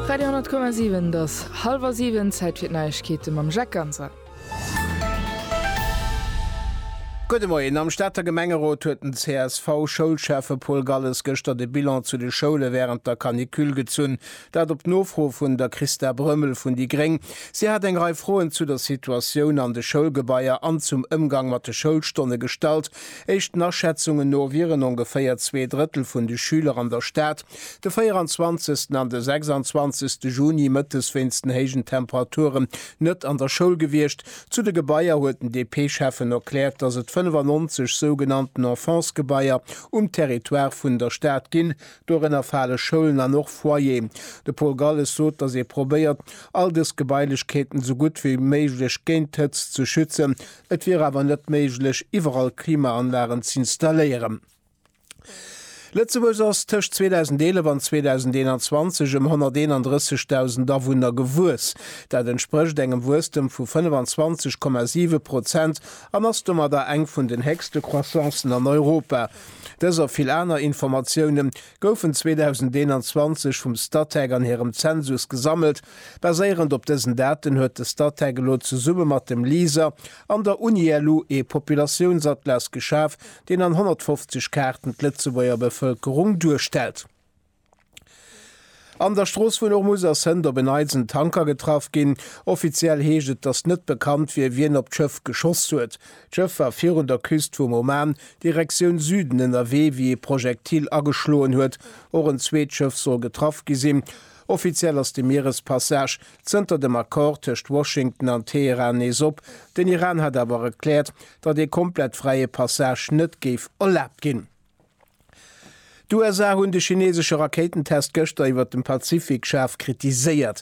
Radio 10,7 't ass halwer siwen, Zäit fir d'Neiegkeete mam Jacques Ganser. Gudde Moien. Am Stater Gemengerot huet den CSV-Schoulschäffe Paul Galles gëschter de Bilan zu de Schoule wärend der Canicule gezunn. Dat op Nofro vun der Christa Brömmel vun déi gréng. Si hat eng Rei Froen zu der Situatioun an de Schoulgebaier an zum Ëmgang mat de Schoulstonne gestallt. Éischten Aschätzungen no wieren ongeféier zwee Drëttel vun de Schüler an der Stad. De 24. an de 26. Juni mëttes wéinst den héijen Temperaturen net an der Schoul gewiescht. Zu de Gebaier huet den DP-Schäffen erkläert, datt et 95 sougenannten Enfance-Gebaier um Territoire vun der Stad ginn. Dorënner fale Schoulen an och Foyeren. De Paul Galles sot, datt ee probéiert, all dës Gebailechkeeten esou gutt wéi méiglech géint d'Hëtzt ze schützen. Et wier awer net méiglech, iwwerall Klimaanlagen z'installéieren. Lëtzebuerg ass tëscht 2011 an 2021 ëm 131.000 Awunner gewuess. Dat entsprécht engem Wuesstem vu 25,7 Prozent an ass domadder eng vun den héchste Croissancen an Europa. Dës a vill aner Informatioune goufen 2021 vum Statec an hirem Zensus gesammelt. Baséierend op dësen Daten huet de Statec elo zesumme mat dem LISER an der Uni-LU ee Populatiounsattlas geschaf, deen an 150 Kaarten d'Lëtzebuerger Bevëlkerung duerstellt. An der Strooss vun Ormuz ass hënt op en Neits en Tanker getraff ginn. Offiziell heescht et, datt net bekannt wier, wien op d'Schëff geschoss huet. D'Schëff war virun der Küst vum Oman, Direktioun Süden, ënnerwee, wéi ee Projektil ageschloen huet. Och en zweet Schëff soll getraff gi sinn. Offiziell ass de Mierespassage Zënter dem Accord tëscht Washington an Teheran nees op. Den Iran hat awer erkläert, datt ee komplett fräie Passage net géif erlaabt ginn. D'USA hunn de chinesesche Rakéitentest gëschter iwwert dem Pazifik schaarf kritiséiert.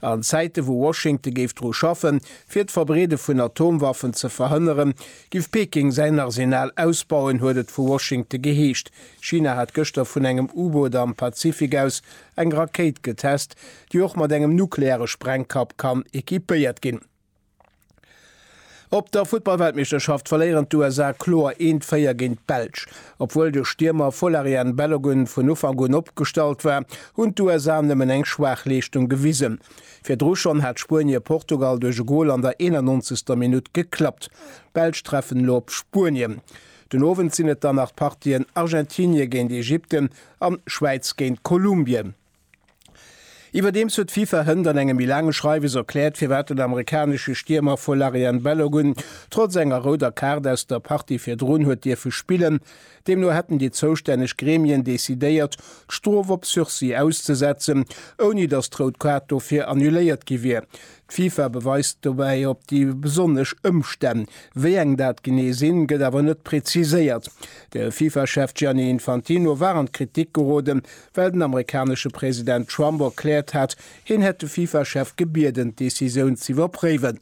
An Zäite wou Washington géif dru schaffen, fir d'Verbreede vun Atomwaffen ze verhënneren, giff Peking säin Arsenal ausbauen, huet et vu Washington geheescht. China hat gëschter vun engem U-Boot am Pazifik aus eng Rakéit getest, déi och mat engem nukleare Sprengkapp kann equipéiert ginn. Op der Futtballweltmeeschterschaft verléieren d'USA kloer 1, 4 géint d'Belsch. Obwuel de Stiermer Folarin Balogun vun Ufank un opgestallt war, hunn d'USA nëmmen eng schwaach Leeschtung gewisen. Virdru schonn hat Spuenie Portugal duerch e Gol an der 91. Minutt geklappt. D'Belsch treffen elo op Spuenien. Den Owend sinn et dann nach d'Partien Argentinie géint Ägypten an Schwäiz géint Kolumbien. Iwwerdeems huet d'FIFA hënt an engem méi laange Schreiwes erkläert, firwat den amerikanesche Stiermer Folarin Balogun trotz enger rouder Kaart aus der Partie virdrun huet dierfe spillen. Deemno hätten déi zoustänneg Gremien decidéiert, d'Strof op Sursis auszesetzen, ouni datt d'rout Kaart dofir annuléiert gi wier. D'FIFA beweist dobäi op déi besonnesch Ëmstänn. Wéi eng dat genee sinn, gëtt awer net preziséiert. De FIFA-Chef Gianni Infantino war an d'Kritik geroden, well den amerikanesche President Trump erkläert hat, hien hätt de FIFA-Chef gebieden, d'Decisioun z'iwwerpréiwen.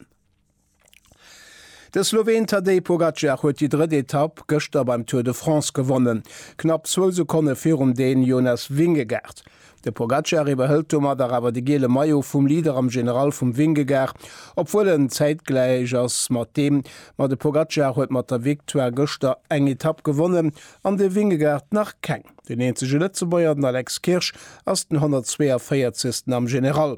De Sloween Tadej Pogacar huet déi drëtt Etapp gëschter beim Tour de France gewonnen, knapp zwou Sekonne virum Dän Jonas Vingegaard. De Pogacar iwwerhëlt domadder awer de giele Maillot vum Leader am General vum Vingegaard, obwuel en zäitgläich ass mat deem. Ma de Pogacar huet mat der Victoire gëschter eng Etapp gewonnen an de Vingegaard nach keng. Den eenzege Lëtzebuerger, den Alex Kirsch, ass den 142. am General.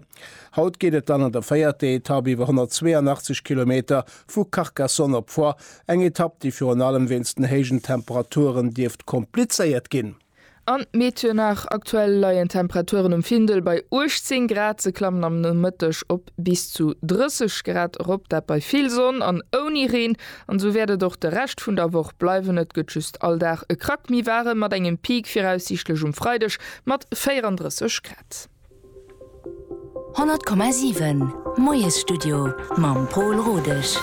Haut geet et dann an der véierter Etapp iwwer 182 Kilometer vu Carcassonne op Foix, eng Etapp, déi virun allem wéinst den héijen Temperaturen dierft komplizéiert ginn. An Meteonach, Aktuell leien d'Temperaturen um Findel bei 18 Grad, se klammen am Nomëtteg op bis zu 30 Grad erop, dat bei vill Sonn an ouni Reen. An esou wäert et och de Rescht vun der Woch bleiwen, et gëtt just all Dag e Krack méi waarem, mat engem Peak viraussiichtlech um Freideg mat 34 Grad. 100,7 Moiesstudio mam Paul Rodesch.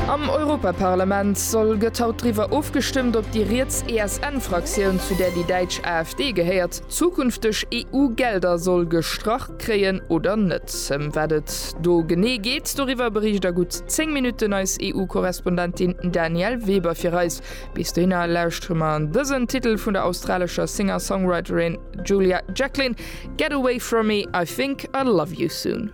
Am Europaparlament soll gëtt haut driwwer ofgestëmmt, ob déi riets ESN-Fraktioun, zu där déi däitsch AfD gehéiert, zukünfteg EU-Gelder soll gestrach. Kréien oder net? Ëm wat et do genee geet, doriwwer bericht a gutt 10 Minutten eis EU-Korrespondentin Danièle Weber fir eis. Bis dohinner lauschtere mer dësen Titel vun der australescher Singer-Songwriterin Julia Jacklin, Get away from me, I think I'll love you soon.